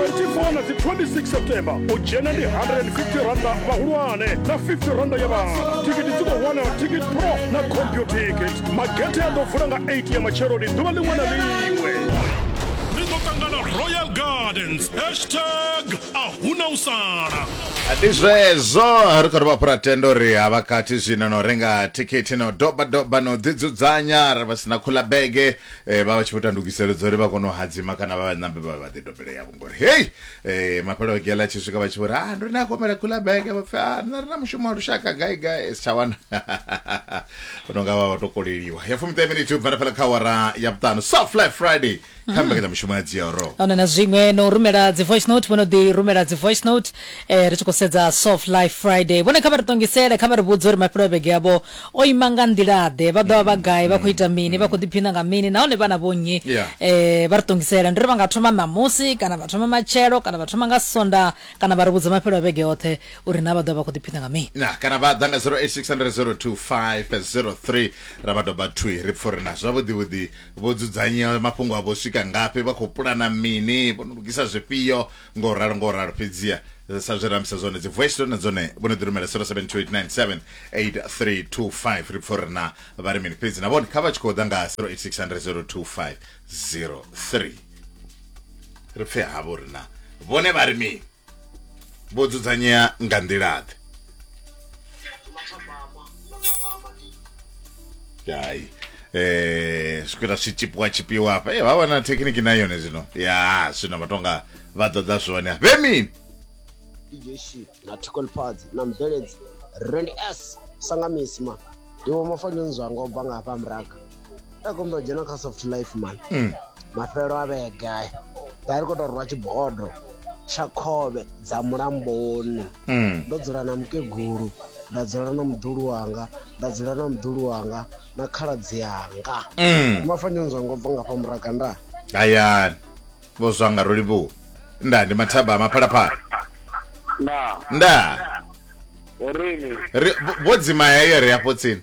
24 na dzi 26 september u dzhena ndi 150 randa vhahulwane na 50 randa ya vhana thikiti dzi khou wanala ticket pro na computicket magethe a ḓo vula nga 8 ya matsheloni ḓuvha ḽiṅwe na ḽiṅwe ri ḓo ṱangana royal gardens hashtag a huna u sala ndi zwezwo ri khou ri vha fhura tenda uri ha vha kati zwino no renga thikhithi no doba doba no ḓidzudzanya ra vha sina khula bege eh, vha vha tshi vho ita ndugiselo dza uri vha kone u hadzima kana vha vhanambe vha vha ḓi dobele yavho ngori hei eh, mapelo a gela tshi swika vha tshi vho ri ah ndo ni a komela khula bege vha pfi ah nṋe ri na mushumo wa lushaka gai gai si tsha wana vho no nga vha vha to koleliwa ya fumiṱahe miniti u bvana fhala kha awara ya vhuṱanu soft life friday kha mbekanyamushumo ya dzioro ona na zwiṅwe no rumela dzi voice note vhono ḓi rumela dzi voice note eh, ri tshi khou sedza soft life friday vhone kha vha ri ṱongisele kha vha ri vhudze uri mafhelo a vhege yavho O ima nga nḓila-ḓe? Vha ḓo vha vha gai? Vha khou ita mini? Vha khou ḓiphina nga mini? Nahone vha na vhonnyi? Yeah. Eh, vha ri ṱongisela. Ndi ri vha nga thoma ṋamusi, kana vha thoma matshelo, kana vha thoma nga Sondaha, kana vha ri vhudza mafhelo a vhege yoṱhe uri naa vha ḓo vha vha khou ḓiphina nga mini. Na, kana vha ḓa nga 0860202503 ra vha doba thwi ri pfa uri na zwavhuḓi-vhuḓi vho dzudzanya mafhungo avho u swika ngafhi, vha khou pulana mini, vho no lugisa zwifhio. ngo ralo ngo ralo fhedziha sa zwe ramisa zwone dzi voice note na dzone vho no ḓi rumela 0728978325 ri pfha uri na vha ri mini fhedzi na vhone kha vha tshi khou ḓa nga 0860025003 ri pfhe havho uri na vhone vha ri mini vho dzudzanyea nga nḓila-ḓe hayi eh zwikwela zwi tshipiwa tshipiwa hafha eh vha vha na thekhiniki na yone zwino ya zwino vha tonga vha ḓoḓa zwone vhe mini DJ Shi na Tickle Pads na Mveledzi Rand S Sangamisma ndiwo mafanelo zwanga u bva nga hafha muraga a kombela u dzhena kha soft life man mm. mafhelo a vhege aya vha ri khou tou rwa tshibodo tsha khovhe dza mulamboni mm. ndo dzula na mukegulu nda dzula na muḓulu wanga nda dzula na muḓulu wanga na khaladzi yanga mm. mafanyoni zwa ngo bva nga fha muraga nda hayani vho zwa nga ro livhuwa nda ndi mathaba a maphalaphala nda nda ri vho dzima heyo ri afho tsini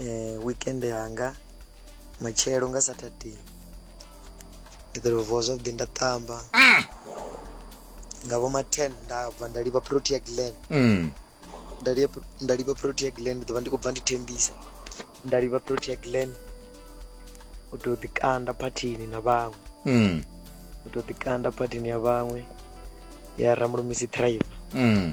eh, weekend yanga matshelo nga saturday ndi ḓo vuwa zwavhuḓi nda ṱamba mm. nga vho ma 10 nda bva nda livha protea glen mm. nda livha protea glen ndi ḓo vha ndi khou bva ndi thembisa nda livha protea glen u tou ḓikanda phathini na vhaṅwe mm. u tou ḓikanda phathini ya vhaṅwe ya ramulumisi tribe mm.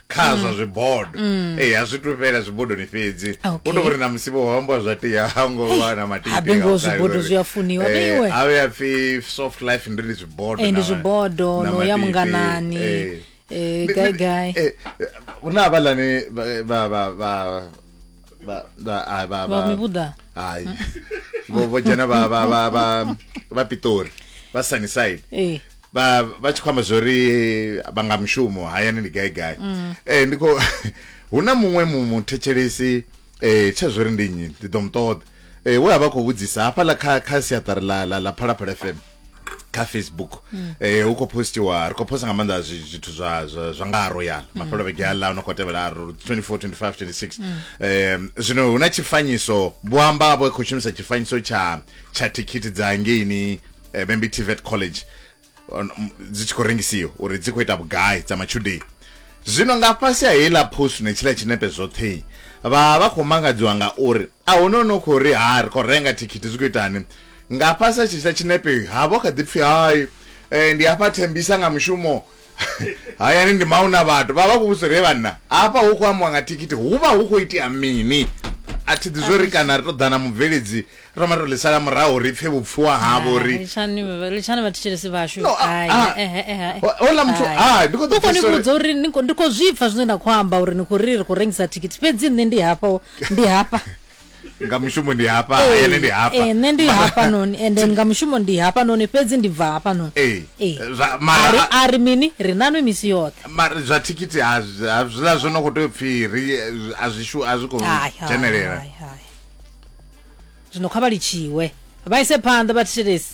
kha zwa mm. zwibodo mm. ee a zwi tu fhela zwibodoni fhedzi u to vhori na musi vho hambwa zwa tea ha ngo vha na matibengo zwibodo zwi a funiwa beiwe a vhe a pfi soft life ndi ndi zwibodo eh, ndi zwibodo no ya munganani eh, eh gai gai eh, una abalani ba ba ba ba ba ai ba ba mi buda ai vho vho dzhena vha vha vha vha vha pitori vha sunnyside eh vha vha tshi khwamba zwori vha nga mushumo hayani ndi gai gai mm. eh ndiko huna muṅwe mu muthetshelesi eh tsha zwori ndi nnyi ndi ḓo muṱoḓa eh we a vha khou vhudzisa hafha la kha kha siaṱari la la la phalaphala fm kha facebook mm. eh hu khou postiwa ri khou posta nga maanḓa zwithu zwa zwa nga ro yana mm. mafhelo vhege aḽa no khou tevhela ro 24 25 26 mm. eh zwino huna tshifanyiso vho amba vho khou shumisa tshifanyiso tsha tsha thikhithi dza ngeini eh, Bambi Tivet College dzi tshi khou rengisiwa uri dzi khou ita vhugai dza matshudeni zwino nga fhasi ha heiḽa post ne tshiḽa tshinepe zwoṱhe vha vha khou mangadziwa nga uri a hu no no khou ri ha ri khou renga thikhithi zwi khou itani Nga fhasi ha tshitshi tsha tshinepe ha vho kha ḓi pfi hai eh, ndi hafha thembisa nga mushumo hayani ndi mauna vhathu vha vha khou vhudzisa uri he vhanna hafha hu khou ambiwa nga thikhithi hu vha hu khou itea mini a thi ḓi zwo ri kana ri tou ḓa na mubveledzi ro ma tou ḽi sala murahu ri pfe vhupfiwa havho uri litshani litshani vhathetshelesi vhashu No, a- Hai, a- eh, eh, eh, hai. ho- hola muthu Hai. ah ndi khou ḓo u khou ni pfisa uri- vhudza uri ni khou- ndi khou zwipfa zwine na khou amba uri ni khou ri ri khou rengisa thikhithi fhedzi nṋe ndi hafha ndi hafha nga mushumo ndi hafha eh, ene ndi hafha eh, nṋe ndi hafha noni and then nga mushumo ndi hafha noni fhedzi ndi bva hafha noni eh, eh. mara a ri mini ri nanwe misi yoṱhe mara zwa thikhithi a zwiḽa zwo no khou tea u pfhi ri a zwi shu a zwi khou dzhenelela zwino kha vha litshiwe vha ise phanḓa vha thetshelesi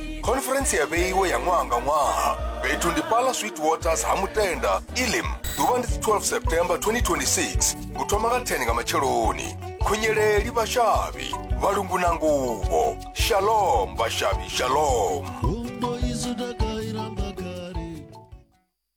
khoniferentsi ya vheiwe ya ṅwaha nga ṅwaha fhethu ndi pala sweet waters ha mutenda ilim ḓuvha ndi 12 september 2026 u thoma nga 10 nga matsheloni khunyeleli vhashavhi vhalungu na nguvho shalom vhashavhi shalom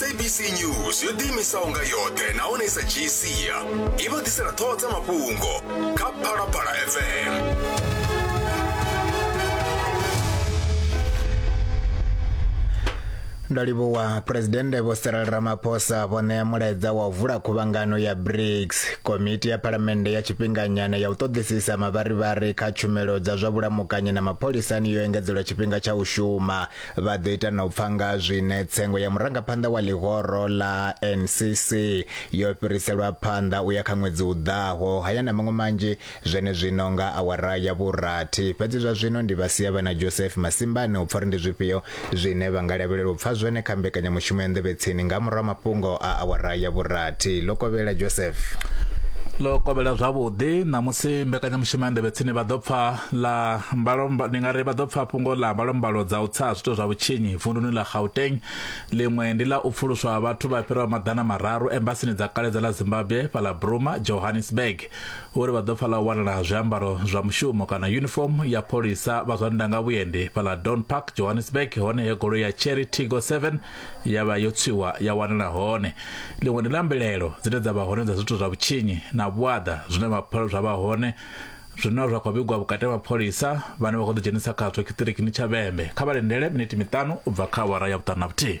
sabc news yo ḓiimisaho nga yoṱhe nahone i sa dzhii sia i vha ḓisela ṱhoho dza mafhungo kha phalaphala fm Ndo livhuwa Phresidennde Vho Cyril Ramaphosa vho ṋea mulaedza wa u vula khuvhangano ya BRICS, komiti ya phalamennde ya tshifhinganyana ya u ṱoḓisisa mavharivhari kha tshumelo dza zwa vhulamukanyi na mapholisani yo engedzelwa tshifhinga tsha u shuma. Vha ḓo ita na u pfa nga zwine tsengo ya murangaphanḓa wa ḽihoro ḽa NCC yo fhiriselwa phanḓa u ya kha ṅwedzi u ḓaho. Haya na maṅwe manzhi Zwenezwino nga awara ya vhurathi. Fhedzi zwa zwino ndi vha sia vha na Joseph masimbani u pfa uri ndi zwifhio zwine vha nga lavhelela u pfa zwone kha mbekanyamushumo ya Nḓevhetsini nga murahu ha mafhungo a awara ya vhurathi. Ḽo kovhela, Joseph. Ḽo kovhela zwavhuḓi. Ṋamusi mbekanyamushumo ya Nḓevhetsini vha ḓo pfa ḽa mbalo, ndi nga ri vha ḓo pfa fhungo ḽa mbalombalo dza u tsa ha zwiito zwa vhutshinyi vunduni ḽa Gauteng. Ḽiṅwe ndi ḽa u pfuluswa ha vhathu vha fhiraho maḓana mararu embasini dza kale dza ḽa Zimbabwe fhaḽa Bruma, Johannesburg. Uri vha ḓo pfa ḽa u wanala zwiambaro zwa mushumo kana yunifomo ya pholisa vha zwa ndanga vhuendi fhaḽa Don Park Johannesburg hone he goloi ya Cherry Tigo 7 ya vha yo tswiwa ya wanala hone. Ḽiṅwe ndi ḽa mbilelo dzine dza vha hone dza zwithu zwa vhutshinyi na vhuaḓa zwine mapholisa zwa vha hone zwino zwa khou vhigwa vhukati ha mapholisa vhane vha khou ḓidzhenisa khazwo tshiṱirikini tsha Vhembe. Kha vha lindele miniti miṱanu u bva kha awara ya vhuṱanu na vhuthihi.